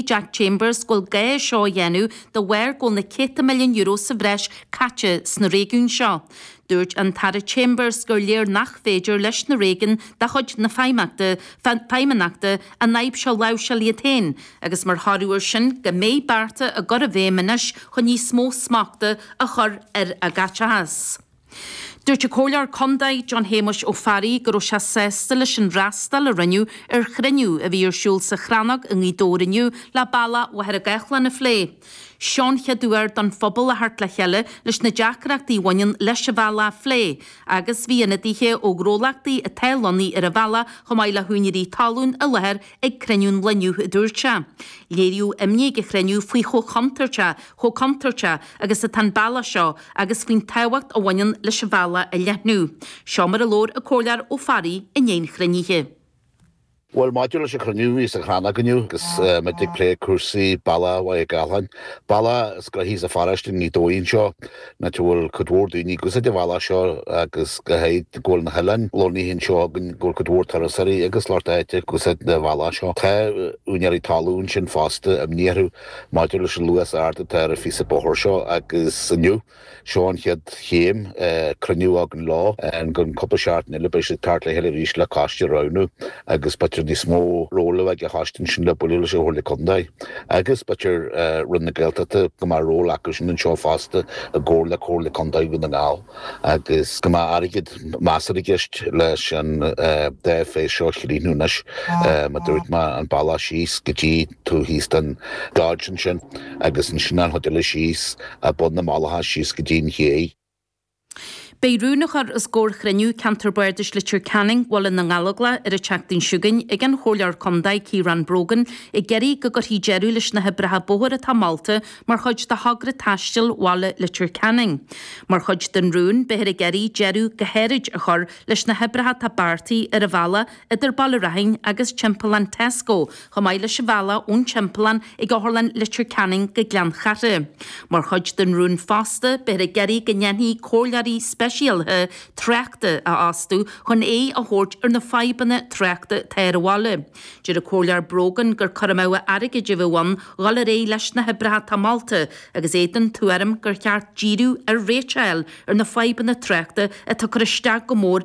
Jack Chambers go bhfuil gá é seo a dhéanamh de bharr go bhfuil na céadta milliún euro sa bhreis caite sna réigiúin seo. Dúirt an tAire Chambers gur léir nach féidir leis na réigiúin de chuid na Feidhmeannachta an fhadhb seo a láimhseáil iad féin agus mar thoradh air sin go mbeidh bearta á gcur i bhfeidhm anois chun níos mó smachta a chur ar a gcaiteachas. Dúirt an Comhairleoir Contae, John Shéamais Ó Fearraigh, go raibh sé sásta leis an fhreastal a rinneadh ar chruinniú a bhí ar siúl sa Chrannóg i nGaoth Dobhair inniu le bealach Mhachaire Gathlán a phlé. Seo an chéad uair don phobal a theacht le chéile leis na deacrachtaí a bhaineann leis an bhealach a phlé agus bhí ionadaithe ó ghnólachtaí atá lonnaithe ar an bhealach chomh maith le húinéirí talún i láthair ag cruinniú an lae inniu, a dúirt sé. Léiríodh imní ag an chruinniú faoi chomh contúirteach chomh contúirteach agus atá an bealach seo agus faoin tábhacht a bhaineann leis an bhealach a leathnú. Seo mar a labhair an Comhairleoir Ó Fearraigh i ndiaidh an chruinnithe. Bhuel, maidir leis an chruinniú, a bhí sa Chrannóg inniu agus muid ag plé cúrsaí bealach Mhachaire Gathlán. Bealach is gnoithí sa pharóiste, ar ndóigh anseo ná go bhfuil cuid mhór daoine ag úsáid an bhealaigh seo agus go háirid go bhfuil na hoileáin lonnaithe anseo againn, go bhfuil cuid mhór turasóirí agus lucht áite ag úsáid an bhealaigh seo. Tá úinéirí talún ansin fosta, imní orthu. Maidir leis an luas ard atá ar an phíosa bóthair seo, agus inniu, seo an chéad chéim, cruinniú againn leo, i gcionn cúpla seachtain eile beidh siad ag teacht le chéile arís le coiste a roghnú agus b'fhéidir níos mó ról ag an choiste ansin le bualadh leis an Chomhairle Contae agus b'fhéidir Roinn na Gaeltachta go mbeidh ról acu sin anseo fosta i gcomhar le Comhairle Contae Dhún na nGall agus go mbeidh airgead measartha i gceist leis an dá phase seo a chríochnú anois, mar dúirt mé, an bealach síos go dtí. taobh thíos den gheata ansin agus ansin an chuid eile síos ag bun na malacha síos go dtí an ché. Beidh rún á chur os comhair chruinniú Ceantar Bardais Leitir Ceanainn, Bhaile na nGallóglach ar an tseachtain seo chugainn ag an Chomhairleoir Contae Ciaran Brogan ag iarraidh go gcuirfí deireadh leis na hoibreacha bóthair atá molta mar chuid de Thogra Taistil Bhaile Leitir Ceanainn. Mar chuid den rún beifear ag iarraidh deireadh go háirid a chur leis na hoibreacha atá beartaithe ar an bhealach idir Baile Raithin agus Timpeallán Tesco, chomh maith leis an bhealach ón timpeallán ag Otharlann Leitir Ceanainn go Gleann Chartha. Mar chuid den rún fosta, beifear ag iarraidh go ndéanfaí comhairleoirí speisialaithe tráchta a fhostú chun aghaidh a thabhairt ar na fadhbanna tráchta atá ar an bhaile. Deir an Comhairleoir Brogan gur cur amú airgid a bheadh ann dhul ar aghaidh leis na hoibreacha atá molta agus é den tuairim gur cheart díriú ar réiteach a fháil ar na fadhbanna tráchta atá ag cur isteach go mór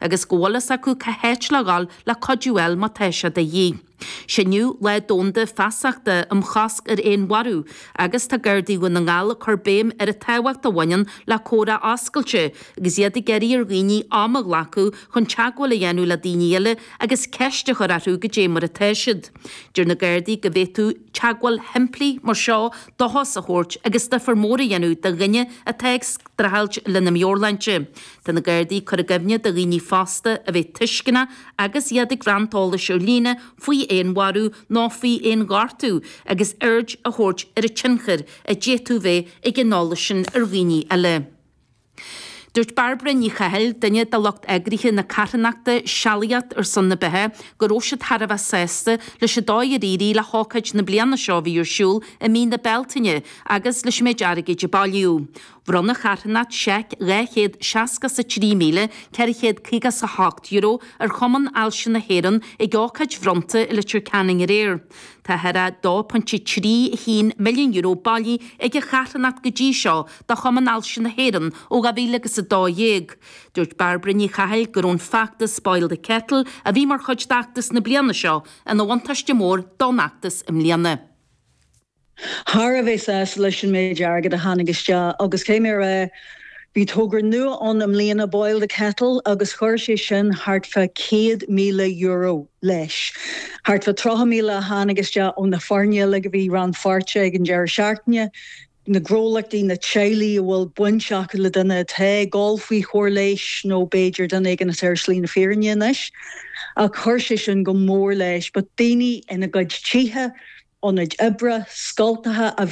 agus go bhfuil fhios acu cá háit le dhul le cuidiú fháil má tá sé de dhíth. 'Sé inniu Lá Domhanda Feasachta um Chosc ar Fhéinmharú agus tá Gardaí Dhún na nGall ag cur béim ar an tábhacht a bhaineann le comhrá oscailte agus iad ag iarraidh ar dhaoine am a ghlacadh chun teagmháil a dhéanamh le daoine eile agus ceist a chur orthu goidé mar atá siad. Deir na Gardaí go bhféadfadh teagmháil shimplí mar seo dóchas a thabhairt agus difear mór a dhéanamh do dhuine atá ag streachailt lena meabhairshláinte. Tá na Gardaí cur i gcuimhne do dhaoine fosta a bheith tuisceanach agus iad ag roinnt eolais ar líne faoi fhéinmharú nó faoi fhéinghortú agus aird a thabhairt ar an tionchar a d'fhéadfadh bheith ag an eolas sin ar dhaoine eile. Dúirt Bairbre Ní Chathail, duine de lucht eagraithe na carthanachta 'Sealaíocht ar son na Beatha' go raibh siad thar a bheith sásta leis an dóigh ar éirigh le hócáid na bliana seo a bhí ar siúl i mí na Bealtaine agus leis an méid airgid a bailíodh. Bhronn an charthanacht seic €263,458 ar Chumann Ailse na hÉireann ag ócáid bhronnta i Leitir Ceanainn aréir. Tá thar €2.31 milliún bailithe ag an charthanacht go dtí seo do Chumann Ailse na hÉireann ó 2012. Dúirt Bairbre Ní Chathail go raibh an feachtas Boil the Kettle, a bhí mar chuid d'fheachtas na bliana seo, ina bhuntáiste mór don iarracht i mbliana. Thar a bheith sásta leis an méid airgid a tháinig isteach agus caithfidh mé a rá, bhí togra nua ann i mbliana, Boil the Kettle, agus chuir sé sin thart fá €100,000 leis. Thart fá 30,000 a tháinig isteach ó na foirne uilig a bhí rannpháirteach ag an deireadh seachtaine, na gnólachtaí, na teaghlaigh a bhfuil baint acu le duine atá ag dul faoi chóir leighis nó b'fhéidir duine éigin atá ar shlí na fírinne anois. Ach chuir sé sin go mór leis. Bhí daoine ina gcuid tithe, ionaid oibre, scoltacha a.